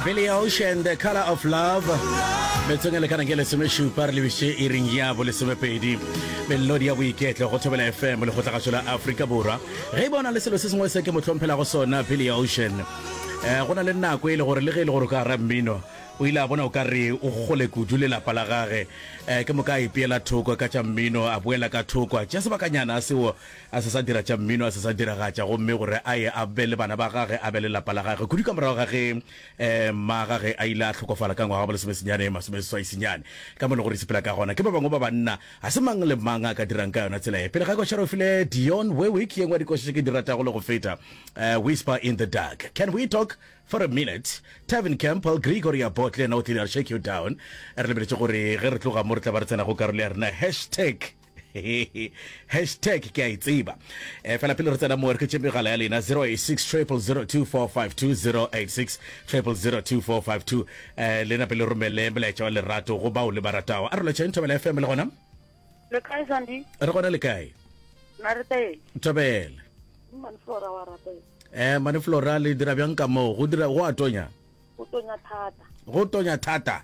Billy Ocean, The Color of Love. metsong e lekana ke lesomešupa re lebise e ring ya bo lesomepedi melodi ya boiketlo go thobela fm le kgotlagatšo la aforika borwa ge e bona le selo se sengwe se ke motlhomphelago sona billy ocean um go na le nako e le gore le ge e le gore o ka ra mmino o ile a bona o ka re o gole kudu lelapa la gage um ke moka a ipeela thoko ka tša mmino a boela ka thoko tša sebakanyana a sewo A se sa dira tša mmino, a se sa diragatša, gomme gore a ye a be le bana ba gage, a be le lapa la gage. Kudu ka morago ga ge mma gage a ile a hlokofala ka ngwaga wa bolesomesenyane masomeseswaisinyane. Ka mo e lego gore e sepela ka gona, ke ba bangwe ba banna, ga se mang le mang a ka dirang ka yona tsela ye. Pele ga koša re o file Dionne Warwick, ye nngwe ya dikoša tše ke di ratago le go feta, Whisper in the Dark. Can We Talk for a Minute? Tevin Campbell, Gregory Abbott le yena o tlile a re Shake You Down. Re lebeletše gore ge re tloga mo re tla ba re tsena go karolo ya rena ya Hashtag. hashtag ke a e tseba um eh, fela pele re tsena moe re ke tšemegala ya lena 086002452086 um eh, lena pele romele molaetša wa lerato go bao le ba ratago a re lotšheng thobela fm le gona le kae sandi re gona le kae na re teng thobela maneflora wa rapela eh maneflora le dira bjang ka moo go dira go a tonya go tonya thata go tonya thata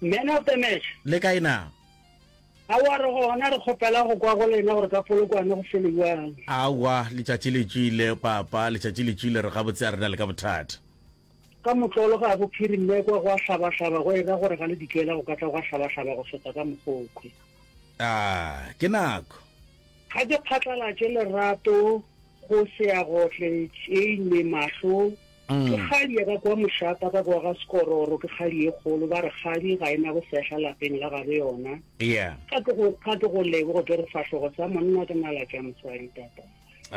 Man of the match. Le kae na? Aowa re gona re kgopela go kwa go lena gore ka polokwane go fele bjang. Aowa letšatši le tšwile papa letšatši le tšwile re gabotse a rena le ka bothata. Ka motlolo ga go phiri mme kwa go a hlabahlaba go ira gore ga le dikela go ka tla go a hlabahlaba go feta ka mokgokhwe. Ah ke nako. Ga ke phatlalatše lerato. Go Seagotle, Tšeine, Mahlo, Ke kgadi ya ba kwa Mošata ba boa ga Sekororo, ke kgadi e kgolo, ba re kgadi ga e na bosehla lapeng la gabo yona. Ga ke go ga ke go leboge ke re fahlogo sa monna ke nala tša mosadi tata.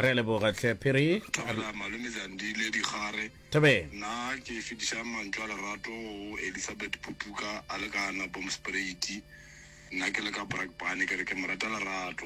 Re a leboga tlhe Phiri. Thobela Malome Zandile Digare. Thobela. Nna ke fetišang mantšu a lerato go Elisabeth Putuka a le ka Anabomspreiti. Nna ke le ka Brakpan ke re ke mo rata lerato.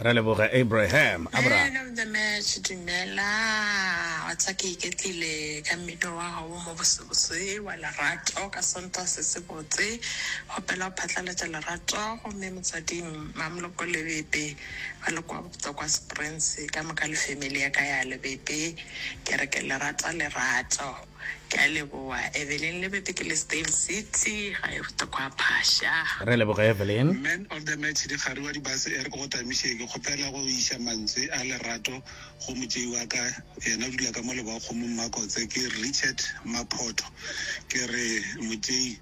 Re leboge Abraham. Abra. Man of the match dumela wa tsa ke iketlile ka mmino wa ga wo mo bosebose wa lerato ka sonta se se botse kgopela go phatlaletša lerato gomme motswading mamloko lebebe ba le kwa bopto kwa springs ka moka le family ya ka ya lebebe ke re ke lerata lerato Ke a leboa Evelyn Lebete ke Lesdale City gae go tekwa phasha. Re leboge Evelyn. Man of the match dikgari wa dibase ere ke go tamiše ke kgopela go iša mantswe a lerato go motšei wa ka yena o dula ka mo lebakgomong makotse ke Richard Maphoto ke re motšei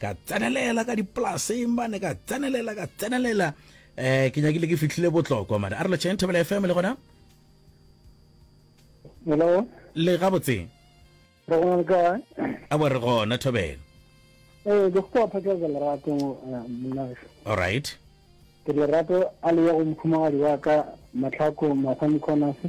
ka tsenelela ka dipolaseng bane ka tsenelela ka tsenelela um ke nyakile ke fitlhile botlokwa mare a re lotšheng thobela fm le gona hello le ga botseng re gona le kae a bo re gona thobela ee ke go phatlalatsa lerato eh, monnagešo all right ke lerato a le ya go mokhumagadi wa ka matlhako mathani khonase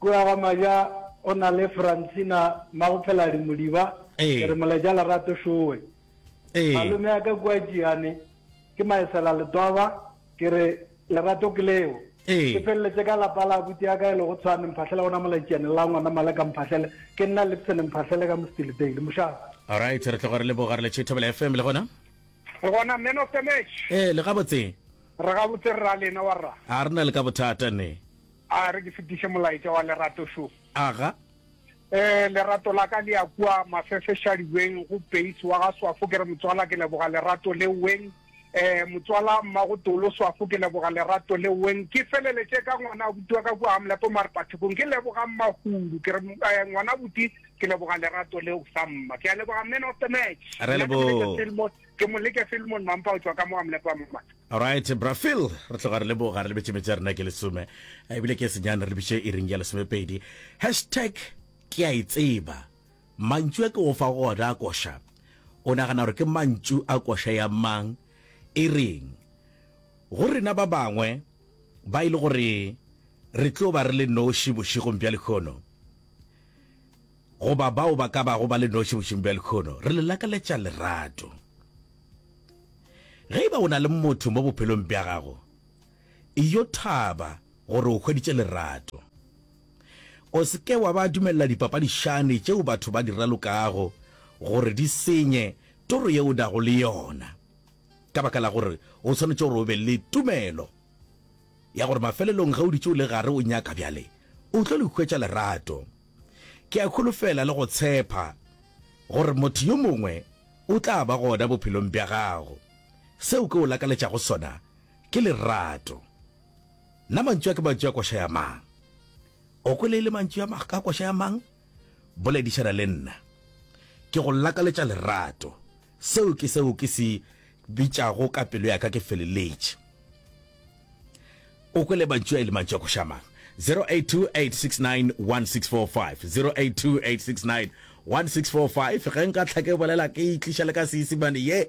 Kua ga Maja go na le Francina Magopheladi Modiba, ke re moleja lerato šowe. Malome a ka kua Tšiyane ke Maesela Letwaba, ke re lerato ke leo. Ke feleletse ka lapa la abuti ya ka e lego Tshwane Mphahlele gona mola Tšiyane, la ngwana Maleka Mphahlele, ke nna Lipson Mphahlele ka Mostilidale. Mošala. Alright, re tloga re leboga re le Cheetahbell FM le gona. Le gona man of the match. Ee, le gabotse. Re gabotse rra lena wa rra. A re na le ka bothata ne. A re ke fetiše molaetša wa Lerato šo? Aga. Ee, Lerato la ka le ya kua mafefešadi weng go Peace wa ga Swafo. Ke re, Motswala, ke leboga lerato le weng. Ee, Motswala Mmagotolo Swafo, ke leboga lerato le weng. Ke feleletše ka ngwanaabuti wa ka kua Amlepo Marepathekong, ke leboga Mmahudu. Ke re, Ee, ngwanaabuti, ke leboga lerato leo sa mma. Ke a leboga, man of the match. Re a leboga. Ke Moleke Filmon Mampa go tšwa ka mo Amlepo, mma. Alright bra Phil, re tloga re leboga re lebetše metse a rena ke lesome ebile ke senyane re lebiše iring ya lesomepedi. Hashtag ke a e tseba mantšu a ke go fa go ona a koša, o nagana gore ke mantšu a koša ya mang e reng go rena ba bangwe ba e le gore re tlo ba re le noši bošegong bja lekhono? goba bao ba ka bago ba le noši bošing bja lekhono, re le lakaletša lerato. Ge e ba o na le motho mo bophelong bja gago, e yo thaba gore o hweditše lerato. O se ke wa ba dumelela dipapadišane tšeo batho ba di ralokago gore di senye toro yeo o nago le yona ka baka la gore o swanetše gore o be le tumelo. ya gore mafelelong ge o dutše o le gare o nyaka bjale o tlo le hwetša lerato. Ke a holofela le go tshepa gore motho yo mongwe o tla ba gona bophelong bja gago. Seo ke o lakaletšago sona ke lerato. Na mantšu a ke mantšu a koša ya mang? O kwele e le mantšu a koša ya mang? Boledišana le nna. Ke go lakaletša lerato. Seo ke seo ke se bitšago ka pelo ya ka ke feleletše. O kwele mantšu a e le mantšu a košamang. 0828691645, 0828691645, Ge nka hlake bolela ke itliša le ka Seisimane ye